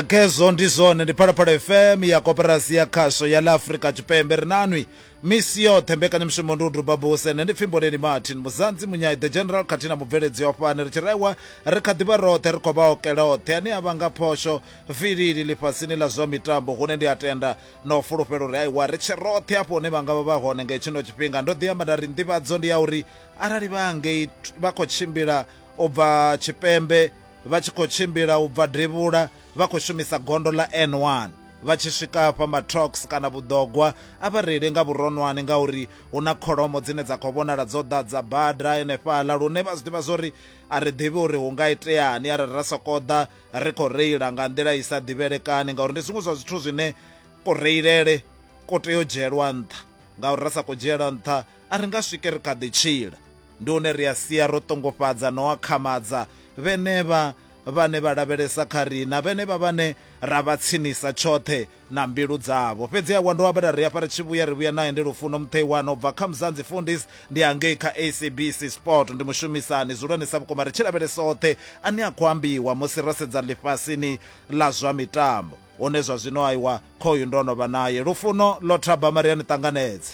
khezwo ndi zwone ndi phalaphala fm ya koperasi ya khasho ya la afrika tshipembe ri nanwi misi yoṱhe mbekanyamushumo ndi u duba buse ne ndi pfimboleli martin muzanzi munyai the general khathihi na mubveledzi wa fhane ri tshi raiwa ri kha ḓivha roṱhe ri khou vha okela oṱhe ane a vha nga phosho vilili ḽifhasini ḽa zwa mitambo hune ndi a tenda na u fulufhela uri aiwa ri tshe roṱhe afho hune vha nga vha vha hone nga hetshino tshifhinga ndo ḓi amba nda ri nḓivhadzo ndi ya uri arali vha ngei vha khou tshimbila u bva tshipembe vha tshi khou tshimbila u bva devhula vha khou shumisa gondo ḽa N1 vha tshi swika afha matrox kana vhuḓogwa a vha reile nga vhuronwane ngauri hu na kholomo dzine dza khou vhonala dzo ḓadza bada enefhaḽa lune vha zwi ḓivha zwo ri a ri ḓivhi uri hu nga iteani arali ra sokou ḓa ri khou reila nga nḓila i sa ḓivhelekani ngauri ndi zwiṅwe zwa zwithu zwine kureilele ko tea u dzhielwa nṱha ngauri ra sa khou dzhiela nṱha A ri nga swike ri kha ḓi tshila. Ndi hune ri a sia ro ṱongofhadza na u akhamadza vhenevha vhane vha lavhelesa kha riṋa, vhenevha vhane ra vha tsinisa tshoṱhe na mbilu dzavho. Fhedzi awa ndi u ambela ri hafha ri tshi vhuya, ri vhuya nae. Ndi Lufuno Mutheiwana u bva kha Mzanzi Fundis, ndi a ngei kha SABC Sport, ndi mushumisani. Dzulani sa vhukuma ri tshi lavhelesa oṱhe ane a khou ambiwa musi ro sedza ḽifhasini ḽa zwa mitambo. Hone zwa zwino aiwa, khoyu ndo no vha nae. Lufuno ḽo thabama, ri a ni ṱanganedza.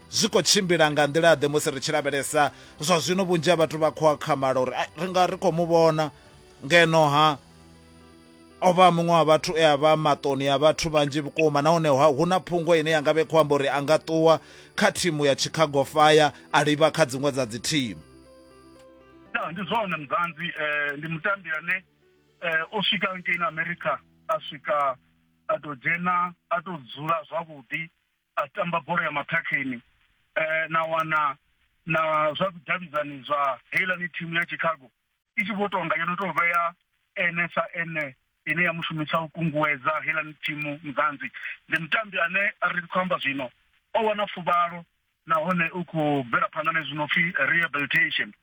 Zwi khou tshimbila nga nḓila-ḓe musi ri tshi lavhelesa zwa zwino? Vhunzhi ha vhathu vha khou akhamala uri ri nga ri khou mu vhona, ngeno-ha o vha muṅwe wa vhathu e a vha maṱoni a vhathu vhanzhi vhukuma nahone hu na phungo ine ya nga vhe khou amba uri a nga ṱuwa kha thimu ya Chicago Fire a livha kha dziṅwe dza dzithimu. Ndi zwone Mzanzi, eh, ndi mutambi ane eh, o swika ngei na America a swika a tou dzhena a tou dzula zwavhuḓi a tamba bola ya mathakheni eh, na wana na zwa vhudavhidzani zwa heilani thimu ya chicago i tshi vho tonga yo no tou vhea ene sa ene ine ya mushumisa u kunguwedza heilani thimu mzanzi ndi mutambi ane ri khou amba zwino o wana fuvhalo nahone u khou bvela phanḓa na zwino pfi rehabilitation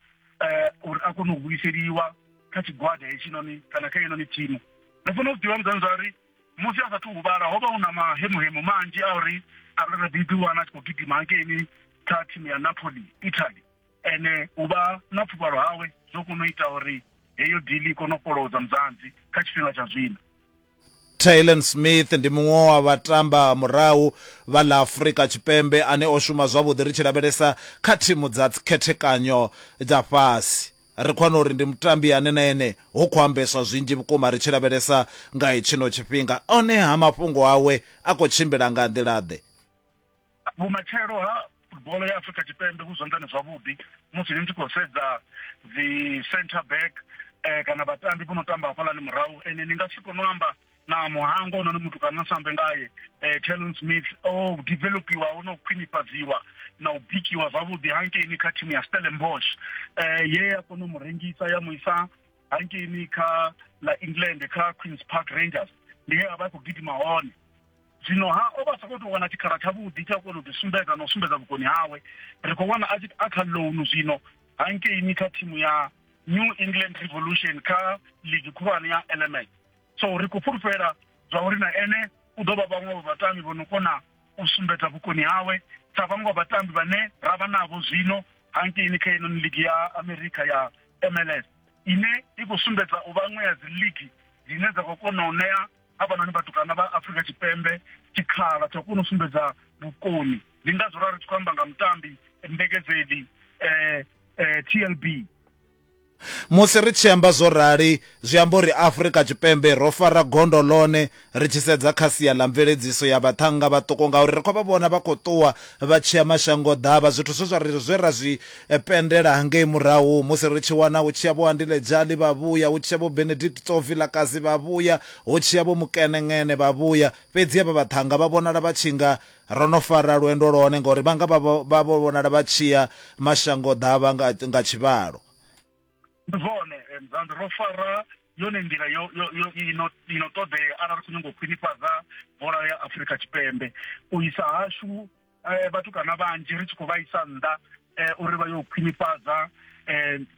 eh uri a kone u vuyiseliwa kha tshigwada hetshinoni kana kha yenoni thimu ri fanela u ḓivha muzanzari musi a sathu huvhala ho vha hu na mahemuhemu manzhi a uri a re ri ḓi wana a tshi khou gidima hankeini kha thimu ya napoli italy ene u vha na pfuvhalo hawe zwo kona u ita uri heyo dili i kone u fholodza muzanzi kha tshifhinga tsha zwino Taylon Smith ndi muṅwe wa vhatamba murahu vha ḽa Afrika Tshipembe ane o shuma zwavhuḓi ri tshi lavhelesa kha thimu dza khethekanyo dza fhasi. Ri khou wana uri ndi mutambi ane na ene hu khou ambeswa zwinzhi vhukuma ri tshi lavhelesa nga hetshino tshifhinga, honeha mafhungo awe a khou tshimbila nga nḓila-ḓe? Vhumatshelo ha futboḽo ya Afrika Tshipembe vhu zwanḓani zwavhuḓi musi ni tshi khou sedza dzi centre back kana vhatambi vho no tamba hafhaḽani murahu, ende ni nga si kone u amba na muhango hounoni muthu kana sa ambe ngaye eh, talon smith o developiwa ho no khwinifhadziwa na u bikiwa zwavhuḓi hankeini kha thimu ya stellenbosch eh, ye ya kona u mu rengisa ya mu isa hankeini kha la england kha queens park rangers ndi he a vha a khou gidima hone zwino ha o vha sa khou tou wana tshikhala tshavhuḓi tsha u kona u ḓisumbedza na u sumbedza vhukoni hawe ri khou wana a tshi a kha lounu zwino hankeini kha thimu ya new england revolution kha ligi khulwane ya element so ri khou fhulufhela zwa uri na ene u ḓo vha vhaṅwe vha vhatambi vho no kona u sumbedza vhukoni hawe sa vhaṅwe vha vhatambi vhane ra vha navho zwino hankeini kha ino ligi ya amerika ya mls ine i khou sumbedza u vha ṅwe ya dzi ligi dzine dza khou kona u ṋea avhanoni vhatukana vha afrika tshipembe tshikhala tsha u kona u sumbedza vhukoni ndi ngazwo ra ri tshi khou amba nga mutambi mbekedzeli um tlb Musi ri tshi amba zwo rali, zwi amba uri Afrika Tshipembe ro fara gondo ḽone ri tshi sedza kha sia ḽa mveledziso ya vhaṱhannga vhaṱuku ngauri ri khou vha vhona vha khou ṱuwa vha tshi ya mashangoḓavha, zwithu zwe zwa ri zwe ra zwi pendela hangei murahu musi ri tshi wana hu tshi ya Vho-Andile Jali vha vhuya, hu tshi ya Vho-Benedict Tso Vilakazi vha vhuya, hu tshi ya Vho-Mukenencene vha vhuya, fhedziha vha vhaṱhannga vha vhonala vha tshi nga Ro no fara lwendo lwone, ngauri vhanga vha vho vha vho vhonala vha tshi ya mashangoḓavha nga nga tshivhalo. Ndi zwone, and ro fara yone nḓila yo yo yo i no i no ṱoḓea arali ri khou nyanga u khwinifhadza bola ya Afrika Tshipembe. U isa hashu vhatukana vhanzhi ri tshi khou vha isa nnḓa uri vha yo khwinifhadza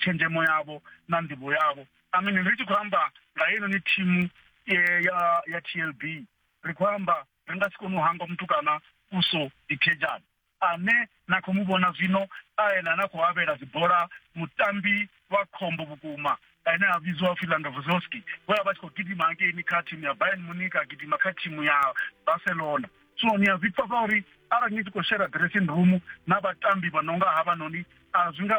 tshenzhemo yavho na nḓivho yavho. I mean ri tshi khou amba nga heinoni thimu ya ya TLB ri khou amba ri nga si kone u hangwa mutukana Uso Ikejan ane na khou mu vhona zwino a ene ane a khou avhela dzibola mutambi wa khombo vhukuma ane a vhidziwa upfi Landovozowski we a vha tshi khou gidima hangeini kha thimu ya Bayern Munich a gidima kha thimu ya Barcelona so ni a zwi pfa zwa uri arali ni tshi khou shera dressing room na vhatambi vha no nga havhanoni a zwi nga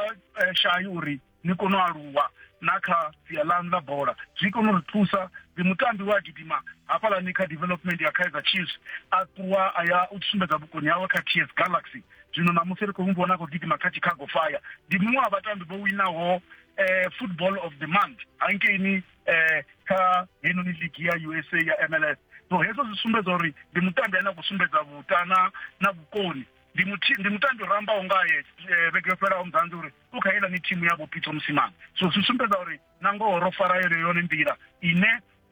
shayi uri ni kone u aluwa na kha sia ḽaṋu ḽa bola zwi kone u ri thusa ndi mutambi wa gidima hafhaḽani kha development ya kaizer chiefs a ṱuwa a ya u sumbedza vhukoni hawe kha ts galaxy zwino namusi ri khou mu vhona a khou gidima kha chicago fire ndi muṅwe wa vhatambi vho winaho um eh, football of the month hankeini um eh, kha heinoni ligi ya usa ya mls so hezwo zwi sumbedza uri ndi mutambi ane a khou sumbedza vhutana na vhukoni ndi mutambi o rambaho ngaye eh, vhege yo fhelaho muzanzi uri u kha yeḽa ni thimu ya vhopitso musimana so zwi sumbedza uri na ngoho ro fara yone yone nḓila ine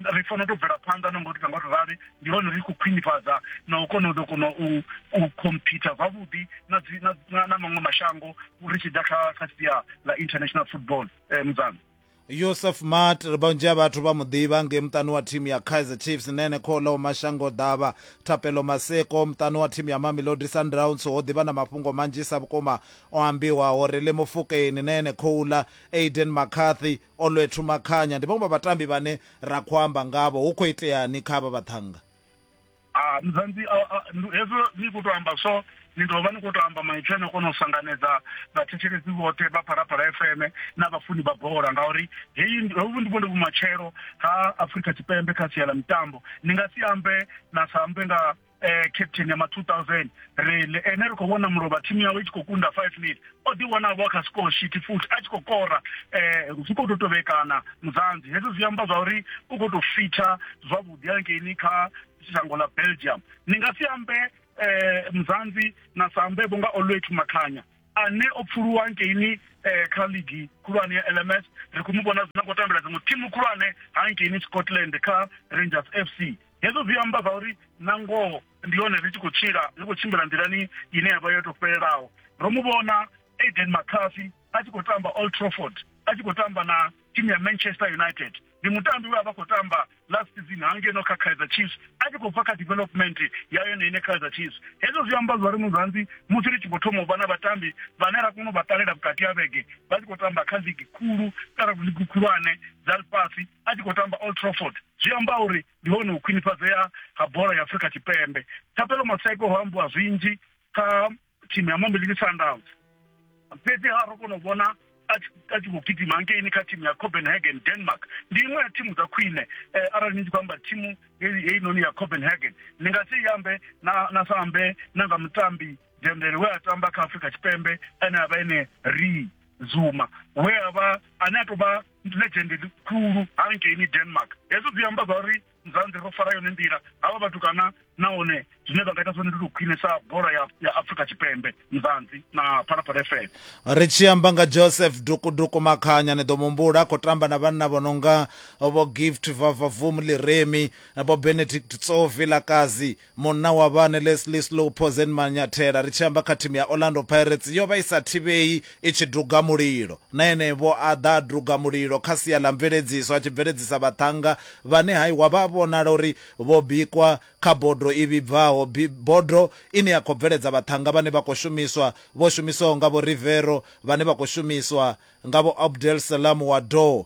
ri fanela to bvela phanḓa na ngori nga ri rali ndi hone ri khou khwinifhadza na u kona u ḓo kona u u khomphitha zwavhuḓi na na maṅwe mashango ri tshi ḓa kha kha sia ḽa international football eh, mudzana yosef mat ri vhunzhi ha vhathu vha muḓivha ngei muṱani wa thimu ya kaizer chiefs nene khola mashango ḓavha thapelo maseko muṱani wa thimu ya mamelodi sundowns ho ḓivha na mafhungo manzhisa vhukuma o ambiwaho ri le mufukeni nene khoula aiden macarthy olwethu makhanya ndi vhaṅwe vha vhatambi vhane ra khou amba ngavho hu khou iteani kha vha vhaṱhannga Ah, mzanzi ah, ah, ndu- hezwo ni khou tou amba so ni ḓo vha ni khou tou amba maipfi ane o kona u sanganedza vhathetshelesi vhoṱhe vha phalaphala fm na vhafuni vha bola ngauri heyi ndi- hovhu ndi vhone vhumatshelo ha afurika tshipembe kha sia ḽa mitambo ni nga si ambe na sa ambe nga eh, captain ya ma 2000 rile ene ri khou vhona mulovha thimu yawe i tshi khou kunda 5 nil o ḓi wanavho a kha score sheet futhi a tshi khou kora um zwi khou tou tovhekana mudzanzi hezwo zwi amba zwa uri u khou tou fitha zwavhuḓi hangeini kha shango ḽa belgium ni nga si ambe um mudzanzi na sa ambe vho nga olwet makhanya ane o pfuluwa hangeini um kha ligi khulwane ya lms ri khou mu vhona zwino khou tambela dziṅwe thimu khulwane hangeini scotland kha rangers f c hezwo zwi amba zwa uri na ngoho ndi hone ri tshi khou tshila ri khou tshimbila nḓilani ine ya vha yo tou fhelelaho ro mu vhona aiden mccarthy a tshi khou tamba old trafford a tshi khou tamba na timu ya manchester united ndi mutambi we a vha khou tamba last season hangeno kha kaizer chiefs a tshi khou bva kha development ya yone ine kaizer chiefs hezwo zwi amba zwa ri muzanzi musi ri tshi khou thoma u vha na vhatambi vhane ra kona u vha ṱalela vhukati ha vhege vha tshi khou tamba kha ligi khulu kana ligi khulwane dza lifhasi a tshi khou tamba old trafford zwi amba uri ndi hone u khwinifhadzea ha bola ya Afrika Tshipembe. Thapelo Maseko ho ambiwa zwinzhi kha thimu ya Mamelodi Sundowns. Fhedzi ha ro kona u vhona a tshi a tshi khou gidima ngeini kha thimu ya Copenhagen Denmark ndi iṅwe ya thimu dza khwine eh, arali ni tshi khou amba thimu heyi heyi noni ya Copenhagen ni nga si yambe na na sa ambe na nga mutambi Dembele we a tamba kha Afrika Tshipembe ane a vha ene Ri Zuma we a vha ane a tou vha ndi legend ḽikhulu hangeini denmark hezwo zwi amba zwa uri mzanzi ro fara yone nḓila havha vhathu kana nahone zwine vha nga ita zwone ndi to khwinisa bola ya, ya afrika tshipembe mzanzi na phalaphala fm ri tshi amba nga joseph dukuduku makhanya ni ḓo mumbula a khou tamba na vhanna vho nonga vho gift vavavum liremi vho benedict tsovi lakazi Munna wa vhane Leslie Slow Pozen Manyathela, ri tshi amba kha thimu ya Orlando Pirates, yo vha i sa thivhei i tshi duga mulilo. Na ene-vho a ḓa a duga mulilo kha sia ḽa mveledziso a tshi bveledzisa vhaṱhannga vhane hai wa vha a vhonala uri vho bikwa kha bodo i vhibvaho, bodo ine ya khou bveledza vhaṱhannga vhane vha khou shumiswa, vho shumiswaho nga Vho Riveiro, vhane vha khou shumiswa nga Vho Abdel Salam Wadoo.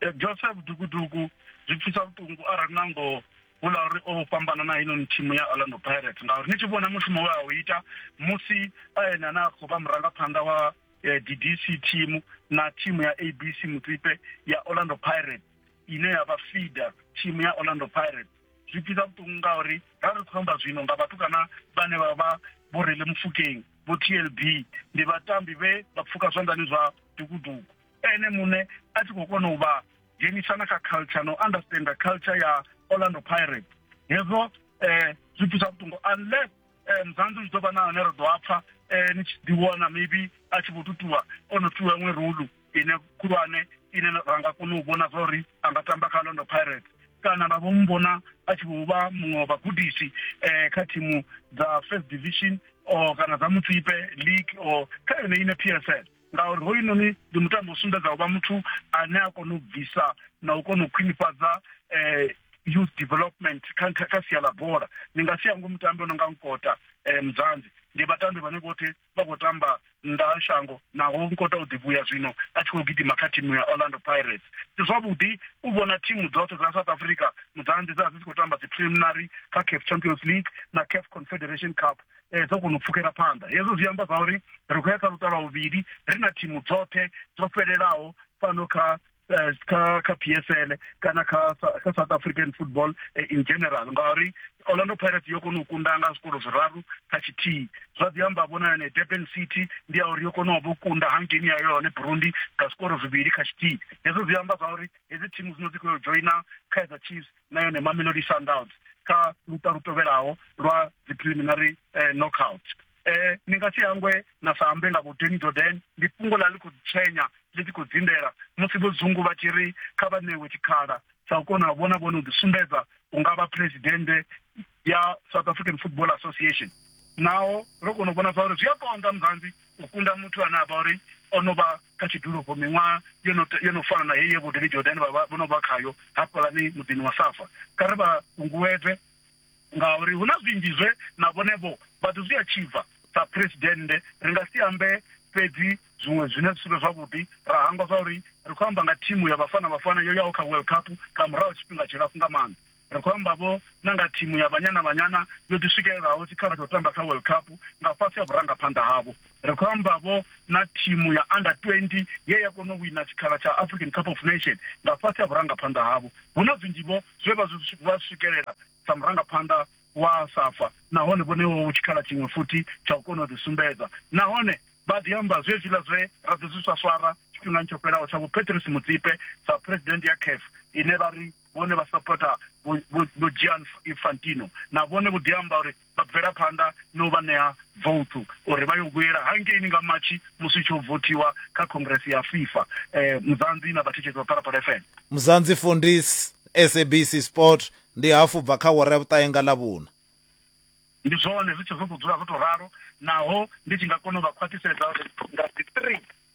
eh, joseph dukuduku zwi pfisa vhuṱungu arali na ngoho vula uri o fhambana na heinoni thimu ya orlando pirates ngauri ni tshi vhona mushumo we a u ita musi ene ane a khou vha murangaphanḓa wa eh, ddc thimu na thimu ya abc mutsipe ya orlando pirates ine ya vha feeder thimu ya orlando pirates zwi pfisa vhuṱungu ngauri ra ri khou amba zwino nga vhathu kana vhane vha vha vho rele mufukeng vho tlb ndi vhatambi vhe vha pfuka zwanḓani zwa dukuduku ene muṋe a tshi khou kona u vha dzhenisa na kha culture na u understanda culture ya orlando pirates hezwo um zwi thusa vhuṱungo unless um muzanzi zwi ḓo vha na hone ri ḓo a pfa um ni tshi ḓiwana maybe a tshi vho tutuwa o no tuwa iṅwe rolu ine khulwane ine ra nga kona u vhona zwa uri a nga tamba kha orlando pirates kana ra vho mu vhona a tshi vho vha muṅwe wa vhagudisi um kha thimu dza first division or kana dza mutsipe league or kha yone ine p s l ngauri hoyunoni ndi mutambo u sumbedza u vha muthu ane a kona u bvisa na u kona u khwinifhadza um youth development kha kha sia ḽa bola ndi nga si hango mutambi o no nga nkota um mudzanzi ndi vhatambi vhane vhoṱhe vha khou tamba nnḓa ha shango naho nkota u ḓivhuya zwino a tshi khou gidima kha thimu ya orlando pirates ndi zwavhuḓi u vhona thimu dzoṱhe dza south africa mudzanzi dza dzi tshi khou tamba dzi preliminary kha caf champions league na caf confederation cup eh, dzo kona u pfukela phanḓa hezwo zwi amba zwa uri ri khou ya kha luṱa lwa vhuvhili ri na thimu dzoṱhe dzo fhelelaho fhano kha eh, kha kha PSL kana kha kha South African football eh, in general ngauri Orlando Pirates yo kona u kunda nga zwikolo zwiraru kha tshithihi zwa ḓi amba vhona yone Durban City ndi ya uri yo kona u kunda hangeni ya yone Burundi nga zwikolo zwivhili kha tshithihi hezwo zwi amba zwa uri hedzi thimu dzino dzi khou joina Kaizer Chiefs na yone Mamelodi Sundowns kha luṱa lu tovhelaho lwa dzi preliminary eh, knockout eh ni nga si hangwe na sa ambe nga vho Danny Jordan ndi fhungo ḽa ḽi khou tshenya ḽi tshi khou dzindela musi vho dzungu vha tshi ri kha vha ṋewe tshikhala sa u kona vhona vhone u ḓisumbedza u nga vha presidente ya South African Football Association naho ro kona u vhona zwa uri zwi a konḓa muzanzi u kunda muthu ane a vha uri o no vha kha tshidulo vho miṅwaha yo no yo no fana na heyi ye Vho David Jordan vha vho no vha khayo hafhaḽani muḓini wa Safa. Kha ri vha kunguwedze ngauri hu na zwinzhi zwe na vhone vho vha ḓo zwi atshivha. Sa Phresidennde, ri nga si ambe fhedzi zwiṅwe zwine zwi si vhe zwavhuḓi, ra hangwa zwauri ri khou amba nga thimu ya Bafana Bafana yo yaho kha World Cup nga murahu ha tshifhinga tshilapfu nga maanḓa. Ri khou amba vho na nga thimu ya Banyana Banyana yo ḓi swikelelaho tshikhala tsha u tamba kha World Cup nga fhasi ha vhurangaphanḓa havho. Ri khou amba vho na thimu ya Under 20 ye ya kona u wina tshikhala tsha African Cup of Nation nga fhasi ha vhurangaphanḓa havho. Hu na zwinzhi vho zwe vha zwi vha swikelela sa murangaphanḓa wa Safa nahone vho ṋewaho tshikhala tshiṅwe futhi tsha u kona u ḓi sumbedza nahone vha ḓi amba zwezwiḽa zwe ra ḓi zwi swaswara tshifhingani tsho fhelaho tsha Vho Patrice Motsepe sa President ya CAF ine vha ri vhone vha sapota vho Gian Infantino na vhone vho ḓiamba uri vha bvela phanḓa no vha ṋea vouthu uri vha yo vhuyela hangeini nga matshi musi tsho vothiwa kha congress ya FIFA eh muzanzi na vhathetshetsi vha Phalaphala FM muzanzi fundis SABC Sport ndi hafu bva kha wara ya vhuṱahe nga ḽa vhuna ndi zwone zwi tshi zwo dzula zwo to ralo naho ndi tshi nga kona u vha khwaṱhisedza uri nga 3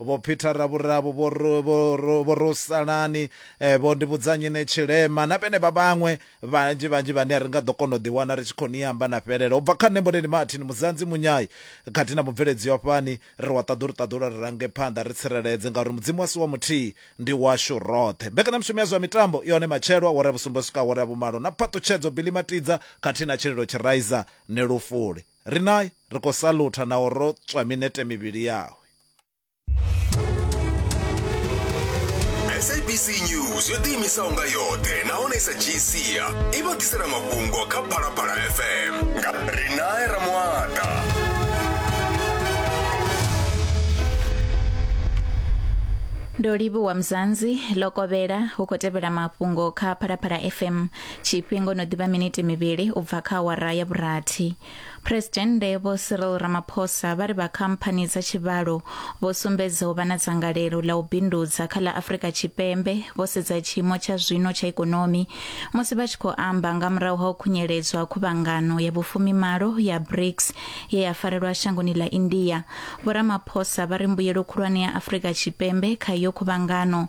Vho Peter Ravhuravu, Vho Ro- Vho Ro- Vho Rosalani, eh, Vho Ndivhudzanyine Tshilema na vhenevha vhaṅwe vhanzhi vhanzhi vhane ri nga ḓo kona u ḓiwana ri tshi khou ni amba na fhelela. U bva kha nṋe Mboneni Martin Muzanzi Munyai khathihi na mubveledzi wa fhani ri wa ṱaḓulu ṱaḓula ri range phanḓa ri tsireledze ngauri Mudzimu a si wa muthihi ndi washu roṱhe. Mbekanyamushumo ya zwa mitambo i hone matshelo awara ya vhusumbe u swika awara ya vhumalo na phaṱutshedzo Billy Matidza khathihi na Tshililo Tshiraiza ni lufuli. Riṋa ri khou salutha na u rotswa minete mivhili yawe. sabc news yo ḓiimisaho nga yoṱhe nahone sa gcia i vha ḓisela mafhungo kha phalaphala fm nga rinae ramuata ndo livhuwa mzanzi lokovhela hu khou tevhela mafhungo kha phalaphala fm Tshifhingo no ḓivha miniti mivhili u bva kha awara ya vhurathi. Phresidennde Vho Cyril Ramaphosa vha ri vha khamphani dza tshivhalo vho sumbedza u vha na dzangalelo ḽa u bindudza kha ḽa Afrika Tshipembe vho sedza tshiimo tsha zwino tsha ikonomi musi vha tshi khou amba nga murahu ha u khunyeledzwa khuvhangano ya vhufumimalo ya BRICS ye ya farelwa shangoni ḽa India. Vho Ramaphosa vha ri mbuyelo khulwane ya Afrika Tshipembe kha iyo khuvhangano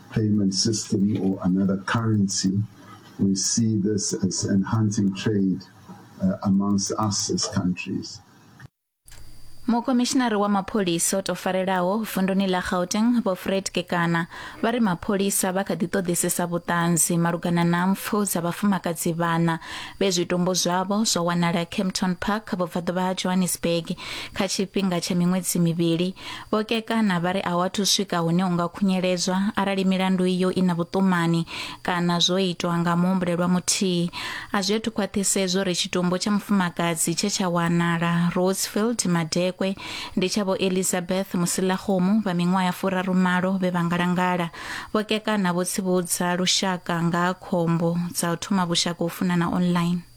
payment system or another currency, we see this as enhancing trade uh, amongst us as countries. mukomishinari wa mapholisa o tofarelaho vunduni ḽa gauteng vho fred kekana vha ri mapholisa vha kha ḓi ṱoḓisisa vhuṱanzi malugana na mpfu dza vhafumakadzi vhana vhe zwitumbu zwavho zwa wanala campton park vhubvaḓuvha ha johannesburg kha tshifhinga tsha miṅwedzi mivhili Vho Kekana vha ri a hu athu swika hune hu nga khunyeledzwa arali milandu iyo i na vhuṱumani kana zwo itwa nga muhumbulelwa muthihi. A zwi athu khwaṱhisedzwa uri tshitumbu tsha mufumakadzi tshe tsha wanala Rosefield, Madekwe, ndi tsha Vho Elizabeth Musilakgomo vha miṅwaha ya furarumalo vhe vha ngalangala. Vho Kekana vho tsivhudza lushaka nga ha khombo dza u thoma vhushaka ho funana online.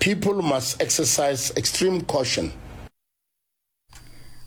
People must exercise extreme caution.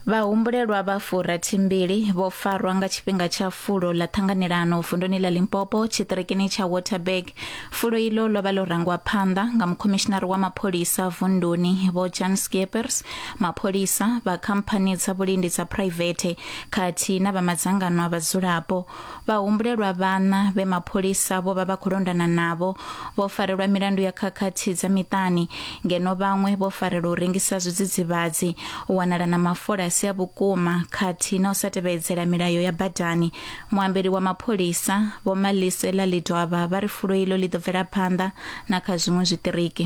Vhahumbulelwa vha furathimbili vho farwa nga tshifhinga tsha fulo ḽa ṱhanganelano vunduni ḽa Limpopo tshiṱirikini tsha Waterberg. Fulo iḽo ḽo vha ḽo rangwa phanḓa nga mukhomishinari wa mapholisa vunduni Vho Jan Skeepers, mapholisa vha khamphani dza vhulindi dza phuraivethe khathihi na vha madzangano a vhadzulapo. Vhahumbulelwa vhaṋa vhe mapholisa vho vha vha khou londana navho vho farelwa milandu ya khakhathi dza miṱani ngeno vhaṅwe vho farelwa u rengisa zwidzidzivhadzi, u wanala na mafola a si a vhukuma khathihi na u sa tevhedzela milayo ya badani. Muambeli wa mapholisa, Vho Malisela Lidwaba, vha ri fulo iḽo ḽi ḓo bvela phanḓa na kha zwiṅwe zwiṱiriki.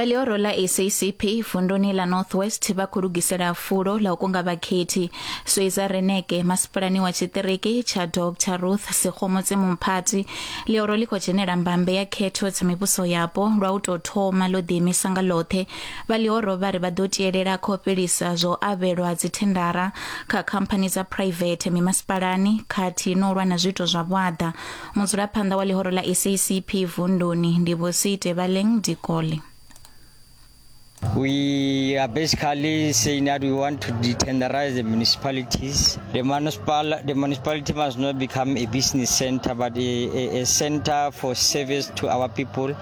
vha ḽihoro ḽa sacp vunduni ḽa north west vha khou lugisela fulo ḽa u kunga vhakhethi sweiza reneke masipulani wa tshiṱiriki tsha dr ruth sekgomotse mumphathi ḽihoro ḽi khou dzhenela mbambe ya khetho dza mivhuso yapo lwa u tou thoma ḽo ḓiimisa nga ḽoṱhe Vha ḽihoro vha ri vha ḓo tielela kha u fhelisa zwa u avhelwa dzithendara kha khamphani dza phuraivethe mimasipalani khathihi na u lwa na zwiito zwa vhuaḓa. Mudzulaphanḓa wa ḽihoro ḽa SACP vunduni ndi Vho Siitebaleng Dikole. We are basically saying that we want to detenderize the municipalities. The, municipal, the municipality must not become a business center, but a, a, a center for service to our people.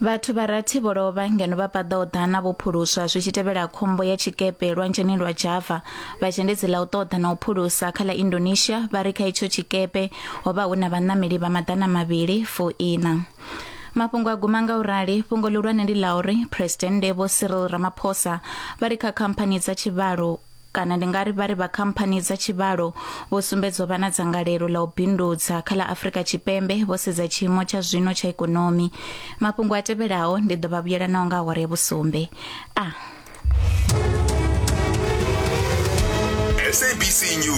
vhathu vha rathi vho lovha ngeno vha paḓaho ḓana vho phuluswa zwi tshi tevhela khombo ya tshikepe lwanzheni lwa java vhazhendedzi ḽa u ṱoḓa na u phulusa kha ḽa indonesia vha ri kha itsho tshikepe ho vha hu na vhaṋameli vha maḓana mavhili fuiṋa mafhungo a guma nga u rali fhungo ḽihulwane ndi ḽa uri phuresidennde vho cyril ramaphosa vha ri kha khamphani dza tshivhalo kana ndi nga ri vha ri vha khamphani dza tshivhalo vho sumbedzwa vha na dzangalelo ḽa u bindudza kha ḽa afurika tshipembe vho sedza tshiimo tsha zwino tsha ikonomi mafhungo a tevhelaho ndi ḓo vha vhuyela naho nga awara ya vhusumbe a ah. SABC News